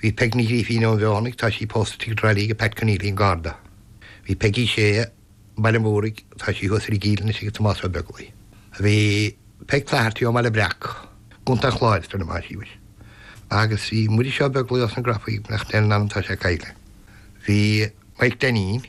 Bhí Peg Ní Ghrífín ón bhFeothanaigh, tá sí pósta istigh i dTrá Lí ag Pat Conneely an Garda. Bhí Peggy Sé, Baile an Mhúraigh, tá sí thuas ar an gCill anois ag Tomás Ó Beaglaoi. Bhí Peg Flaherty ó mBaile Breac, i gContae an Chláir, is dóigh liom, tá sí anois. Agus bhí Muiris Ó Beaglaoi ós na Grafaí, beannacht Dé lena anam, tá sé caillte. Bhí Mike Dainín.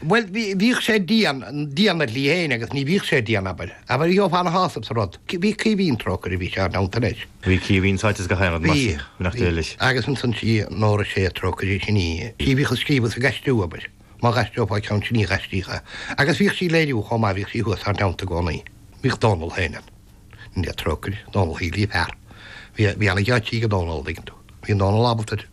Bhuel, bhíodh sé dian, dian ina shlí fhéin agus ní bhíodh sé dian, abair. Abair, gheofá ana-shásamh sa rud. Bhí Caoimhín, trócaire air, bhí sé inár dteannta leis. Bhí Caoimhín sáite sa ghairm, mar sin, beannacht Dé leis? Bhí, bhí. Agus ansan sí Nóra Sé, trócaire sin í, sí a bhíodh ag scríobh is ag aistriú, abair. Má dh'aistreofá ceann sin í dh'aistríodh é. Agus bhíodh sí ag léiriú chomh maith, bhíodh sí thuas inár dteannta i gcónaí. Bhíodh Dónall fhéin ann. Níl aon trócaire, Dónall Sheáin Liam Sheáin. Bhí, bhí ana-gheáitsí ag Dónall, an dtuigeann tú. Bhí Dónall ábalta air.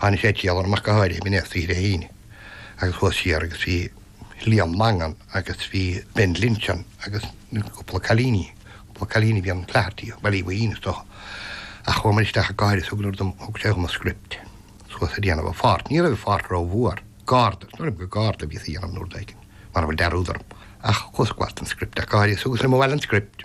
Tháinig sé ag triall orm ach go háirithe i mí na Saoire hAoine agus chuas siar agus bhí Liam Mangan agus bhí Ben Linton agus cúpla cailíní, cúpla cailíní a bhí an Flaherty, Baile Uí Bhaoithín is dócha. Ach chuamar isteach ach go háirithe is thug leor dom, thug sé dhom an script suas a' déanamh a pháirt, ní raibh a pháirt ró-mhór, Garda, is dóigh liom gur Garda a bhíos a' dhéanamh an uair éigin, mara bhfuil dearúd orm. Ach chuas go bhfad den script ach go háirithe is thugas liom abhaile an script.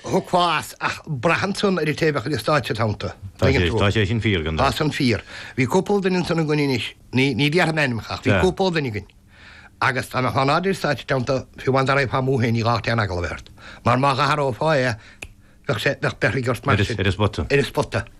Thiocfá as, ach braitheann san ar an té a bheadh ar an stáitse id theannta. Tá sé, tá sé sin fíor, gan dabht. Tá san fíor. Bhí cúpla duine ansan againn anois, ní, ní déarfaidh mé ainmneacha, ach bhí cúpla duine againn, agus dá mbeadh in airde ar an stáitse id theannta, fiú amháin dá raghfá amú féin, ní gá dhuit aon eagla a bheith ort, mar má dh'athrófá é, bheadh sé, bheadh beirthe aige ort mar sin. Ar an spota. Ar an spota.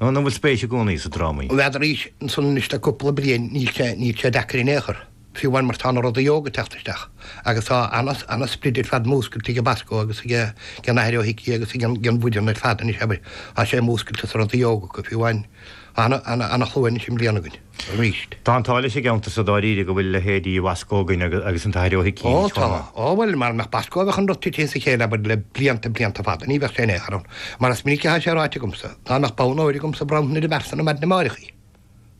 Nó an bhfuil spéis i gcónaí sa drámaí? Tá arís ansan anois le cúpla bliain níl sé níl sé deacair in aon chor, fiú amháin mar tá na rudaí óga teacht isteach agus tá ana ana sprid ar fad múscailte ag Bosco agus ag ag an Athair Ó hIcí agus ag an bhuíon ar fad anois abair tá sé múscailte sa rudaí óga acu fiú amháin tá ana ana ana shlua anois i mbliana againn. arís. Tá an t-ádh leis an gceantar so dáiríre go bhfuil leithéidí Bhosco againn agus an tAthair Ó hIcí arís chomh maith. Ó tá. Ó bhuel, mara mbeadh Bosco bheadh an rud tite as a chéile abair le blianta, blianta fada. Ní bheadh sé in aon chor ann. Mar is minic athá sé ráite agamsa, dá mbeadh bonn óir agamsa bhronnfainn airsean ar maidin amáireach í.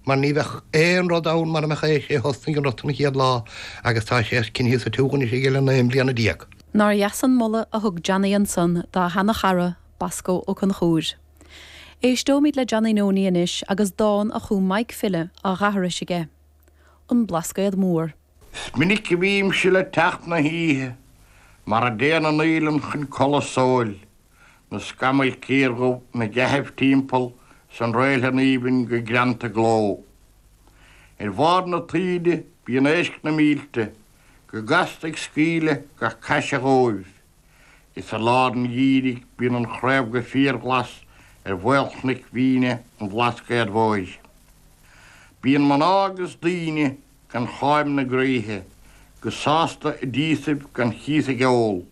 Mar ní bheadh aon rud ann mara mbeadh é. Is é a thosnaigh an rud an chéad lá agus tá sé coinnithe sa tsiúl anois aige le naoi mbliana déag. Nár dheas an moladh a thug Johnny ansan dá sheana chara, Bosco Ó Conchúir. Éisteoimid le Johnny Noni anois agus dán a chum Maidhc File á dh'aithris aige, An Blascaod Mór. 'S minic a bhímse le teacht 'na hoíche mar a dtéann an fhaoileann chun codladh sóil, na scamaill chiardhubh, na geithibh timpeall 's an réiltean aoibhinn go greanta gleo. Ar bharr na taoide bíonn éisc na mílte go gasta ag scaoileadh gach caise dhóibh. Is i lár an gheimhridh bíonn an chraobh go fíorghlas ar mhaolchnoic mhíne an Bhlascaod Mhóir. Bíonn mná is daoine gan cháim ina dtréithe go sásta i dtíosaibh gan chíos ag ól.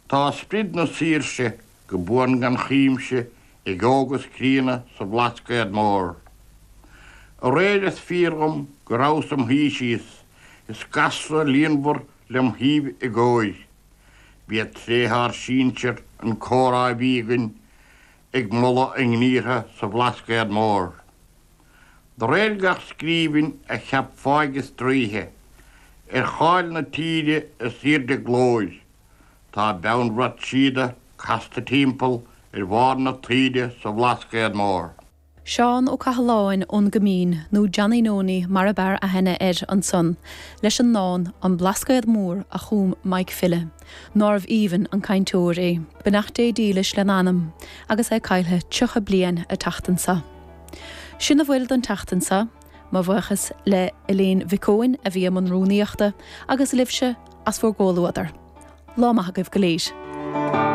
Tá sprid na saoirse go buan gan chuimse ag óg is críonna sa Bhlascaod Mór. Aréir is fíor dhom go rabhas im shuí síos is gasra líonmhar lem' thaobh i gcóir. B'iad tréithe ár sínsear an comhrá a bhí againn, ag moladh a ngníortha sa Bhlascaod Mór. De réir gach scríbhinn a cheap fáidh is draoithe ar cháil na tíre is aoirde glóir, tá beannbhrat síoda casta timpeall ar bharr na taoide sa Bhlascaod Mór. Seán Ó Cathaláin ón gCoimín, nó Johnny Noney mar ab fhearr aithne air ansan, leis an ndán 'An Blascaod Mór' a chum Mike File, nárbh aoibhinn an cainteoir é, beannacht Dé dílis lena anam, agus é caillthe 30 bliain a tseachtain seo. Sin a bhfuil don tseachtain seo. Mo bhuíochas le Elaine Mhic Eoin a bhí i mbun rúnaíochta, agus libhse as bhur gcomhluadar. Lá maith agaibh go léir.